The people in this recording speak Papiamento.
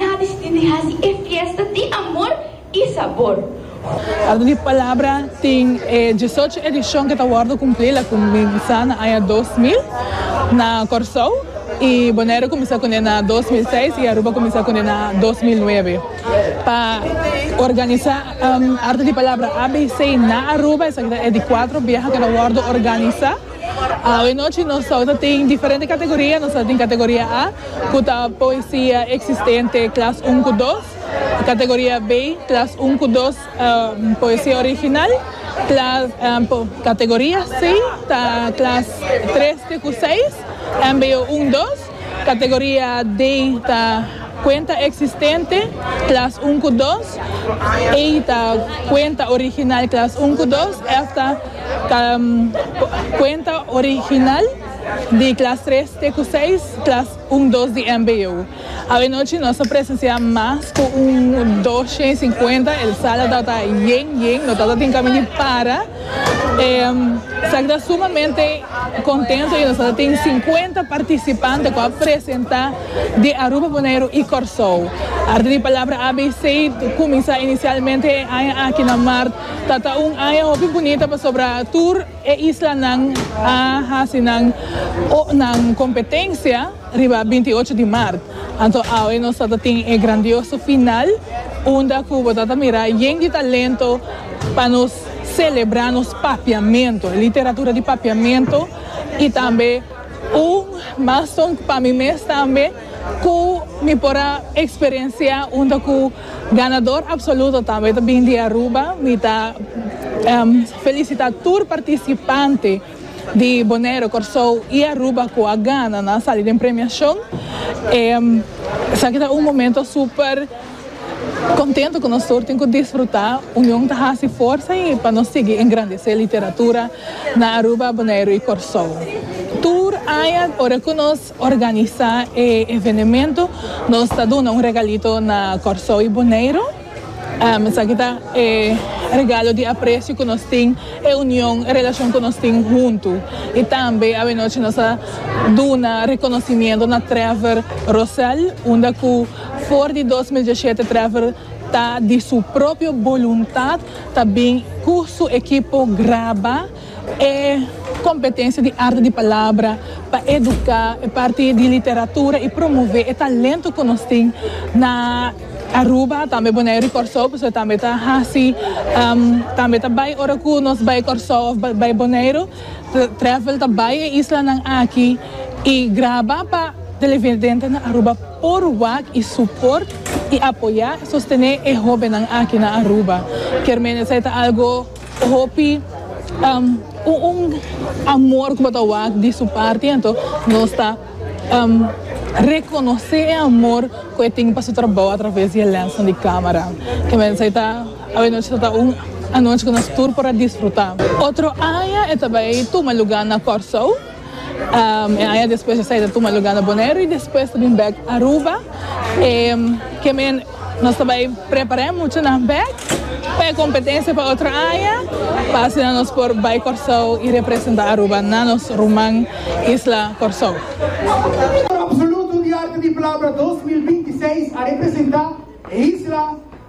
Na distin di haci e fiesta di amor y sabor. Orde di palabra tin e diesocho edicion ke ta wordo cumpli la cuminsa na aña dos mil na Corsou y Bonaire cuminsa cune na dos mil seis y Aruba cuminsa cune na dos mil nuebe pa organisa orde di palabra ABC na Aruba esaki ta e di cuatro biaha ke ta wordo organisa. Awe nochi nos tou ta tin diferente kategoria. Nos ta tin kategoria A, ku ta poesia eksistente klas un ku dos. Kategoria B, klas un ku dos poesia original. Klas, kategoria C ta klas treste ku seis, MBO un dos. Categoria D ta cuenta existente, klas un ku dos, E ta cuenta original, klas un ku dos, F ta cuenta original di klas tres te ku seis, klas un dos di mbo. Awenochi nos a presencia mas ku un dosha i sinkuenta, el sala tabata yen yen, no tabata tin kami di para. Sa ki ta sumamente kontento i nos a tin sinkuenta partisipante ku a presentá di Aruba, Boneiru i Kòrsou. Arti di palabra ABC kuminsá inisialmente e aña aki na mart ta ta un aña hopi bunita pasobra tur e islanan a hasi nan kompetensia riba binti ocho di mart. Anto awe nos ta ta tin e grandioso final unda ku bo ta ta mira yen di talento pa nos. Selebrá nos papiamento, e literatura di papiamento i tambe un maston pa mi mes tambe ku mi por a eksperensiá unda ku ganador apsoluto tambe ta bin di Aruba. Mi ta felisitá tur partisipante di Boneiru, Kòrsou i Aruba ku a gana nan sali den premiashon. Esaki ta un momento super. Kontentu ku nos tur tin ku disfrutá union ta hasi forsa i pa nos sigui engrandesé literatura na Aruba, Boneiru i Kòrsou. Tur aña ora ku nos organisá e evenementu nos ta duna un regalito na Kòrsou i Boneiru. Esaki ta e regalo di apresio ku nos tin, e union, e relashon ku nos tin huntu. I tambe awenochi nos a duna rekonosimiento na Trevor Rosell unda ku. For di dos mil diesshete Trevor ta di su propio boluntat ta bin cu su ekipo graba e competencia di arte di palabra pa educa e parti di literatura y promove e talento cu nos tin na Aruba tambe Bonaire y Corsou pasobra tambe ta haci tambe ta bay ora cu nos bay Corsou of bay Bonaire Trevor ta bay e islanan aki y graba pa televidente na Aruba. Por wak y suport y apoya y sostene e hobennan aki na Aruba. Kier meenesei ta algo hopi un amor cu bo ta wak di su parti ento nos ta reconoce e amor cu e tin pa su trabao a traves di e lensnan di camera. Kier meenesei ta awenochi ta ta un anochi cu nos tur por a disfruta. Otro aña e ta bay tuma lugar na Corsou. E aña despues esei ta tuma luga na Boneiru y despues ta bin bek Aruba. E keme nos ta bai prepara e muchanan bek pa e competencia pa otro aña pa asina nos por bai Corsou y representa Aruba na nos ruman isla Corsou. Absoluto di arte di palabra dos mil binti seis a representa e isla.